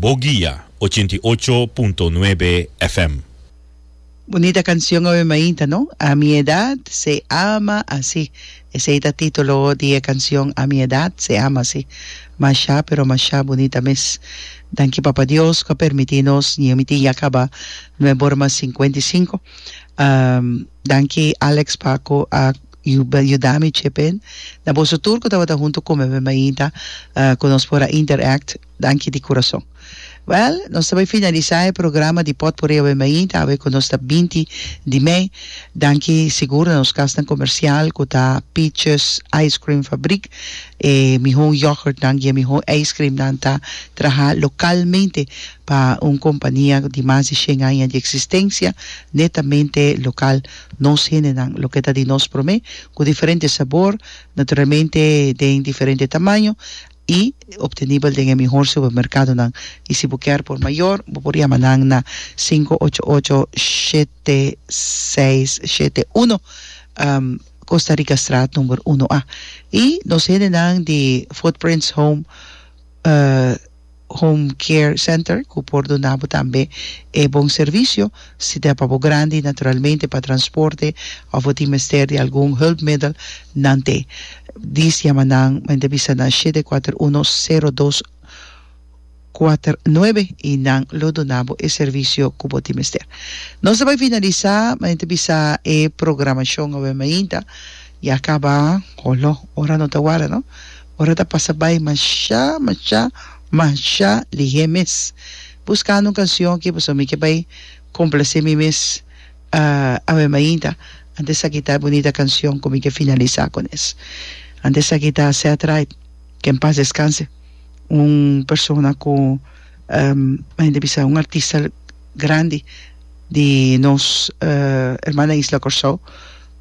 Bo guia ochenta i ocho punto nuebe FM. Bunita cancion awe mainta no? A mi edad se ama asi Esey ta titulo di e cancion A mi edad se ama asi Masha pero masha bunita mes Danki Papa Dios cu a permiti nos Ñe mi tin ya caba Nueborma cincuenta y cinco Danki Alex Paco a Yuda, yuda mi chepen. Na boso tur cu tabata hunto come me mainta cu nos por a interact, danki di curason. Well, nos ta bay finalisa e programa di Potpourri awe mainta, awe cu nos ta binti di mei. Danki sigur na nos casnan comercial cu ta Peaches Ice Cream Fabriek. E mihon yoghurtnan y e mihon ijscreamnan ta traha localmente pa un compania di mas di shen aña di existencia, netamente local. Nos hendenan, loke ta di nos promé, ku diferente sabor, naturalmente den diferente tamaño i obtenibel den e mihor supermerkadonan. I si bo kèr por mayor, bo por yama nan na sinku ocho ocho shete seis shete uno, Costa Ricastraat number uno A. I nos hendenan di Footprints Home. Home Care Center cu por duna bo tambe e bon servicio. Si ta pa bo grandi, naturalmente pa transporte of bo tin mester di algun hulpmiddel, nan te. Dis yama nan, men ta bisa na shete kuater uno sero dos kuater nuebe y nan lo duna bo e servicio cu bo tin mester. Nos ta bai finalisa, men ta bisa e programacion awe mainta ya caba. Holo, ora no ta warda no. Ora ta pasa bai mashá, mashá, mashá lihé mes. Buskando un kansion ki pasobra mi ke bai komplasé mi mes. Awe mainta antes esaki ta e bunita kansion ku mi ke finalisá ku nes. Antes esaki ta Seth Wright, ke en pas deskanse, un persona ku mainta bisa un artista grandi di nos hermana isla Kòrsou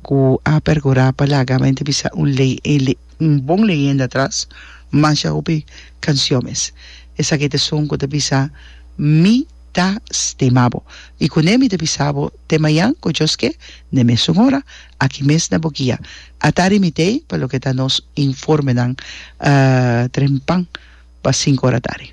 ku a pergurá pa laga mainta bisa un lei. Un bon leyenda atras, masha hopi canciones. Esaki ta esun cu ta bisa, Mi ta stima bo. Y cu ne mi ta bisa bo te mayan cu djos ke, n'e mesun ora, aki mes na bo guia. Ata arimitei pa loke ta nos informenan, trempan pa sinku ora atari.